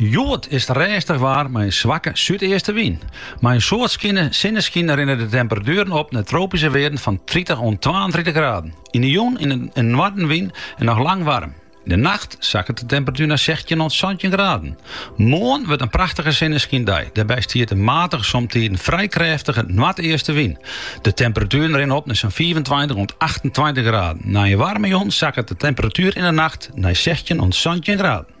Hjoed is it rêstich waar mei in swakke súdeastewyn. Mei in soad sinneskyn rinne de temperatueren op nei tropyske wearden fan tritich oant twaentritich graden. Yn de jûn in noardewyn en noch lang waarm. Yn de nacht sakket de temperatuer nei sechstjin oant santjin graden. Moarn wurdt it prachtige sinneskyn, dêrby stiet in matige somtiden frij krêftige noardeastewyn. De temperatueren rinne op nei sa'n fiifentweintich oant achtentweintich graden. Nei in waarme jûn sakket de temperatuer yn de nacht nei sechstjin oant santjin graden.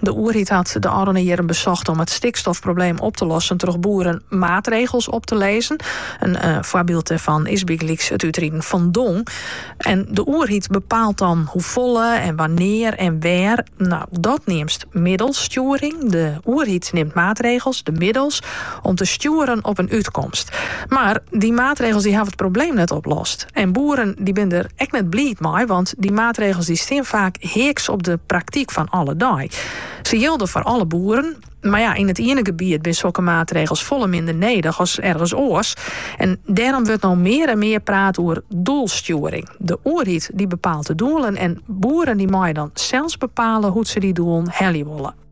De oerheid hat de ôfrûne jierren besocht om it stikstofprobleem op te lossen troch boeren maatregels op te lizzen. In eh, foarbyld dêrfan is bygelyks it útriden fan dong. En de oerheid bepaalt dan hoefolle en wannear en wêr. No, dat neamst middelstjoering. De oerheid nimt maatregels, de middels, om te stjoeren op in útkomst. Mar dy maatregels dy hawwe it probleem net oplost. En boeren dy binne der ek net bliid mei, want dy maatregels dy stean faak heaks op de praktyk fan alle dei. Se jilde foar alle boeren, mar ja, yn it iene gebiet binne sokke maatregels folle minder nedich as ergens oars. En dêrom wurdt no mear en mear praat oer doelstjoering. De oerheid dy bepaalt de doelen en boeren dy meie dan sels bepale hoe't se dy doelen helje wolle.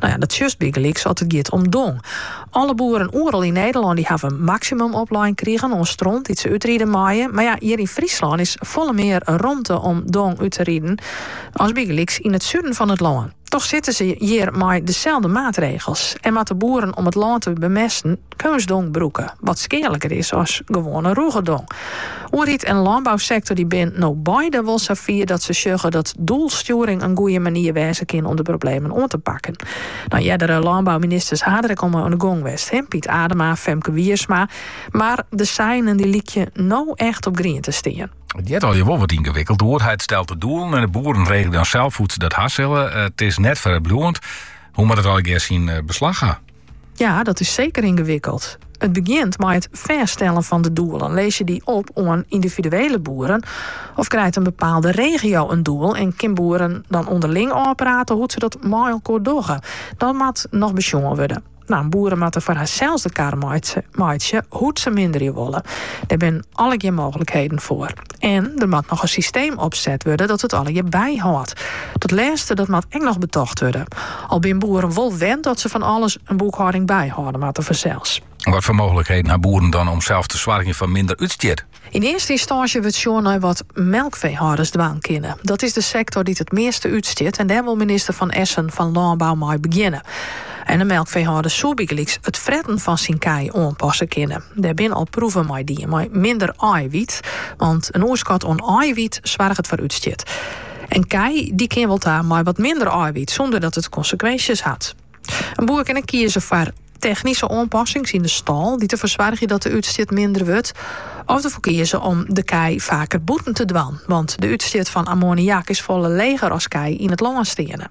No ja, dat sjochst bygelyks as it giet om dong. Alle boeren oeral yn Nederlân dy hawwe in maksimum oplein krigen oan stront dy't se útride meie. Mar ja, hjir yn Fryslân is folle mear romte om dong út te riden as bygelyks yn it suden fan it lân. Toch sitte se hjir mei deselde maatregels en moatte boeren om it lân te bemesten. Keunstdong brûke, wat skealiker is as gewoane rûge dong. Oerheid en lânbousektor dy binne no beide wol sa fier dat se sjogge dat doelstjoering in goeie manier wêze kin om de problemen oan te pakken. No, eardere lânbouministers ha der ek al oan de gong west, Piet Adema, Femke Wiersma, mar de seinen dy lykje no echt op grien te stean. It heart al je wol wat yngewikkeld. De oerheid stelt de doelen en de boeren regele dan sels hoe't se dat ha sille. It is net frijbliuwend. Hoe moat it allegear syn beslach krije? Ja, dat is seker yngewikkeld. It begjint mei it fêststellen fan de doelen. Lizze je die op oan individuele boeren? Of krijt in bepaalde regio in doel en kin boeren dan onderling ôfprate hoe't se dat mei elkoar dogge? Dat moat noch besjoen wurde. En boeren moatte foar harsels de kar meitsje hoe't se minderje wolle. Dêr binne allegear mooglikheden foar. En der moat noch in systeem opset wurde dat it allegear byhâldt. Dat lêste dat moat ek noch betocht wurde. Al binne boeren wol wend dat se fan alles in boekhâlding byhâlde moatte fansels. Wat foar mooglikheden ha boeren dan om sels te soargjen foar minder útstjit? Yn earste ynstânsje wurdt sjoen nei wat melkfeehâlders dwaan kinne. Dat is de sektor dy't it measte útstjit en dêr wol minister Van Essen fan Lânbou mei begjinne. En de melkfeehâlder soe bygelyks it fretten fan syn kij oanpasse kinne. Dêr binne al proeven mei dien mei minder eiwit, want in oerskot oan eiwit soarget foar útstjit. In ko dy kin wol ta mei wat minder eiwit sûnder dat it konsekwinsjes hat. In boer kin ek kieze foar technyske oanpassings yn de stal dy't derfoar soargje dat de útstjit minder wurdt, of derfoar kieze om de kij faker bûten te dwaan, want de útstjit fan ammoniak is folle leger as kij yn it lân steane.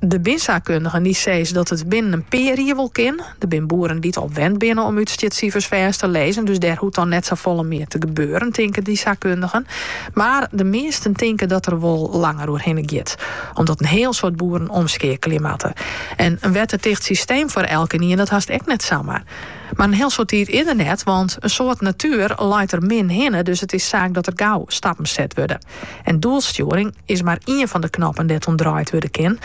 Der binne saakkundigen dy't sizze dat it binnen in pear jier wol kin. Der binne boeren dy't al wend binne om útstjitsifers fêst te lizzen, dus dêr hoecht dan net safolle mear te gebeuren, tinke dy saakkundigen. Mar de measten tinke dat der wol langer oer hinne giet, omdat in hiel soad boeren omskeakelje moatte. En in wetterticht systeem foar elkenien, dat hast ek net samar. Mar in hiel soad tiid is der net, want in soad natuer leit der min hinne, dus it is saak dat der gau stappen set wurde. En doelstjoering is mar ien fan de knoppen dêr't oan draaid wurde kin.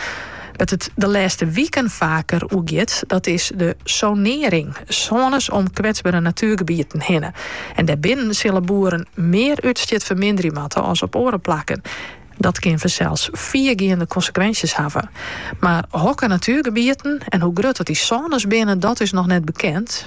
Wêr't it de lêste wiken faker oer giet, dat is de sonearring, sônes om kwetsbere natuergebieten hinne. En dêrbinnen sille boeren mear útstjit ferminderje moatte as op oare plakken. Dat kin fansels fiergeande konsekwinsjes hawwe. Mar hokker natuergebieten en hoe grut dat dy sônes binne, dat is noch net bekend.